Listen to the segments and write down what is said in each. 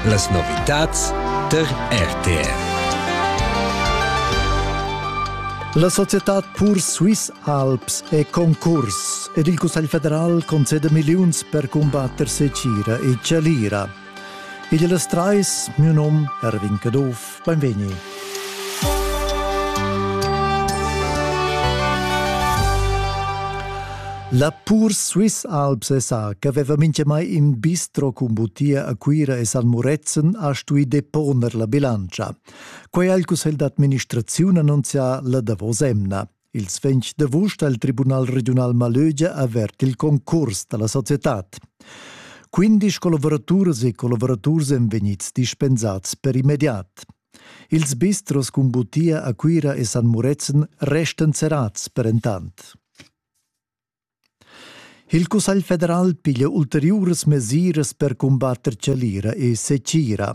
Las novitads tar RTR. La societad Pur Swiss Alps è concurs ed il Cussegl federal concede milliuns per cumbatter Secira e Chalira. Igl las trais, miu nom Erwin Caduff. Beinvegni. La pur Swiss Alps sa che veva mintgamai in bistro cun butia a Cuira e San Murezzan ha stui deponer la bilantscha. Quei ha il cussegl d'administraziun annunzià la davos emna. Ils ventg d'avust ha il Tribunal regiunal Malögia avert il concurs da la societad. Quindisch collavoraturas e collaboraturs èn vegnids dispensads per immediat. Ils bistros cun butia a Cuira e San Murezzan restan serrads per entant. Il Cussegl federal piglia ulteriuras mesiras per cumbatter chalira e secira.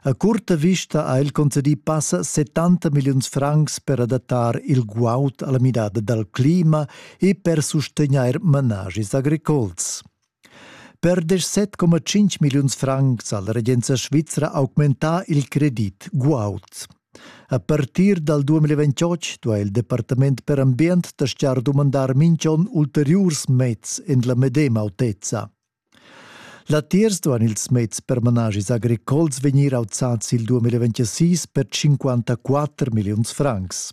A curta vista ha el concedì passa 70 milliuns francs per adattar il guaud alla midada dal clima e per sustegnair managis agricols. Per 17,5 milliuns francs ha la regenza svizra augmentà il credit guaud. A partir dal 2028 duai il departament per ambient dastgar dumandar minch'on ulteriurs meds en la medema autezza. Latiers duan ils meds per managis agricols vegnir auzads il 2026 per 54 milliuns francs.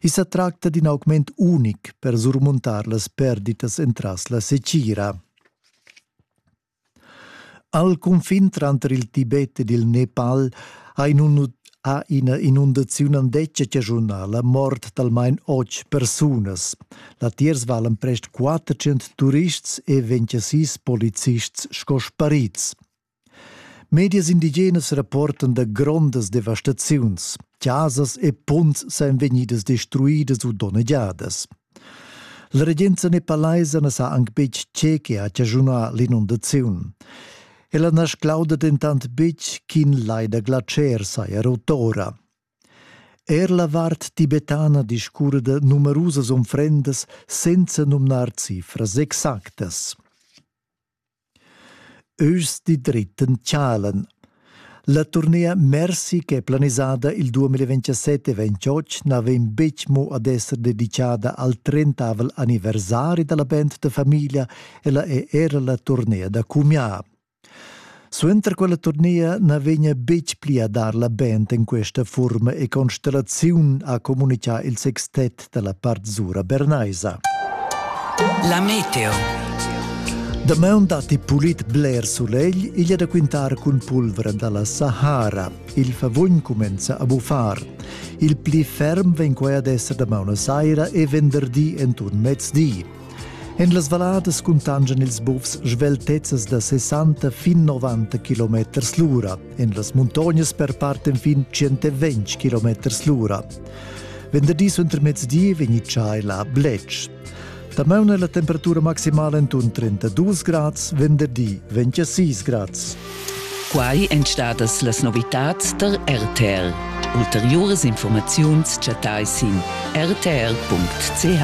I sa tracta d'in augment unic per surmuntar las perditas entras la secira. Al cunfin tranter il Tibet ed il Nepal ha, in, ha ina inundaziun andetga chaschunà la mort d'almain otg persunas. Latiers valan prest 400 turists e 26 polizists sco sparits. Medias indigenas rapportan da grondas devastaziuns. Casas e punts san vegnidas destruidas u donnegiadas. La regenza nepalaisa na sa anc betg tge che ha chaschunà l'inondaziun. Ella na sclauda dentant betg ch'in lai da glatscher saja rotora. Er la vart tibetana discurre da numerusas unfrendas senza numnar cifras exactas. Eus di dritten tschalen. La turnea Mercy che è planisada il 2027 e 28 na vegn betg mo ad esser dedicada al 30 anniversari dalla band da famiglia, ella è era la turnea da cumià. Suenter quella turnea na vegna betg pli a dar la band en questa furma e Constellaziun ha communitgà il sextet dalla part zura bernaisa. La meteo. Damaun datti pulit bler sulegl, igl è da quintar cun pulvra dalla Sahara. Il favugn cumenza a buffar. Il pli ferm vegn quai ad esser damaun a saira e venderdi entun mezdi. En las valladas cuntangian ils bufs sveltezzas da 60 fin 90 km l'ura. En las muntognas perparten fin 120 km l'ura. Venderdi suentermezdi vegni chai la Bletsch. Damaun è la temperatura maximala intorno 32 grads, venderdi 26 grads. Quai èn stadas las novitads der RTL. Ulteriores Informaziuns chattai sin rtl.ch.